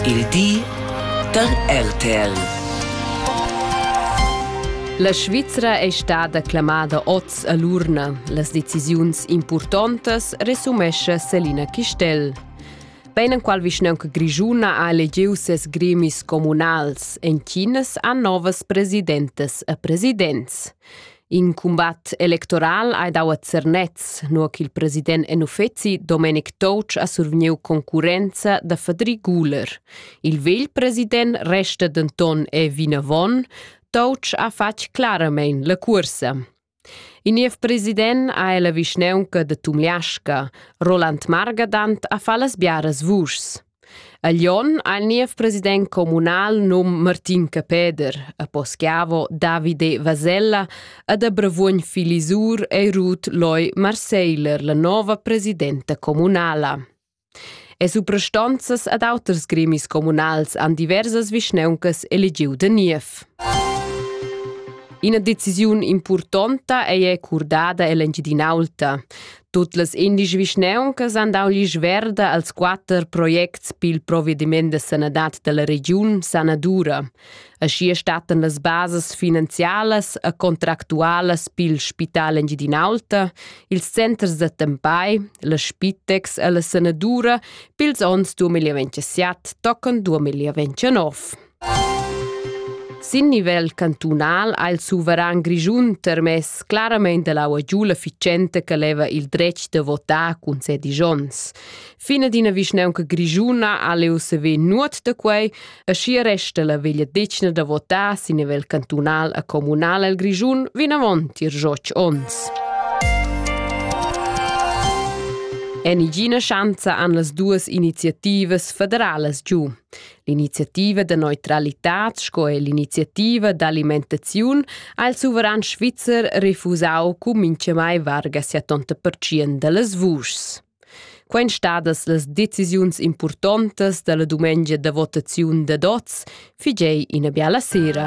Il di da RTL. La Svizra è stada clamada oz a l'urna. Las decisiuns impurtontas resumescha Selina Chistel. Beinenqual vischnanca grigiuna ha elegiu ses gremis communals. En Chinas ha novas presidentas e presidents. In cumbat electoral ha dau a Zernez, nua ch'il president en uffeci Domenic Toutsch ha survegniu concurrenza da Fadri Guler. Il vegl president resta denton è vinavon. Toutsch ha fatg claramein la cursa. Il niev president ha la vischneunca de Tumliasca. Roland Margadant ha fa las biaras vuschs. A Lyon ha il niev president communal num Martin Capeder, a Poschiavo Davide Vasella ed a Bravuogn Filisur ei Ruth Loy Marseiler la nova presidenta communala. E suprastonzas ad auters gremis communals han diversas vischneuncas elegiu da niev. Ina decisiun impurtonta ei è curdada ell'Engiadinaulta. Tut las indici vischnauncas han dau l'isch verda als quatter projects pil provediment da sanadad dalla regiun Sanadura. Aschia stattan las basas finanzialas e contractualas pil Spital Engiadin'Alta, ils centers da tempai, la Spitex e la Sanadura pils onns 2027 tocan 2029. Sin nivel cantunal ha il suveran grischun termess claramain dall'aua giu l'efficienta che leva il dretg da votar cun sedisch onns. Fine d'ina vischnaunca grischuna ha leu sever nuot da quei, e schi resta la vegliadetgna da votar sin nivel cantunal e communal el Grischun vinavon tier joc onns. En igina schanza han las duas iniziativas federalas giu. L'iniziativa da neutralitad sco er l'iniziativa d'alimentaziun ha il suveran svizzer refusau cun mintgamai varga 70% dallas vuschs. Quein stadas las decisiuns impurtontas dalla dumengia da votaziun da dots figei ina biala sera.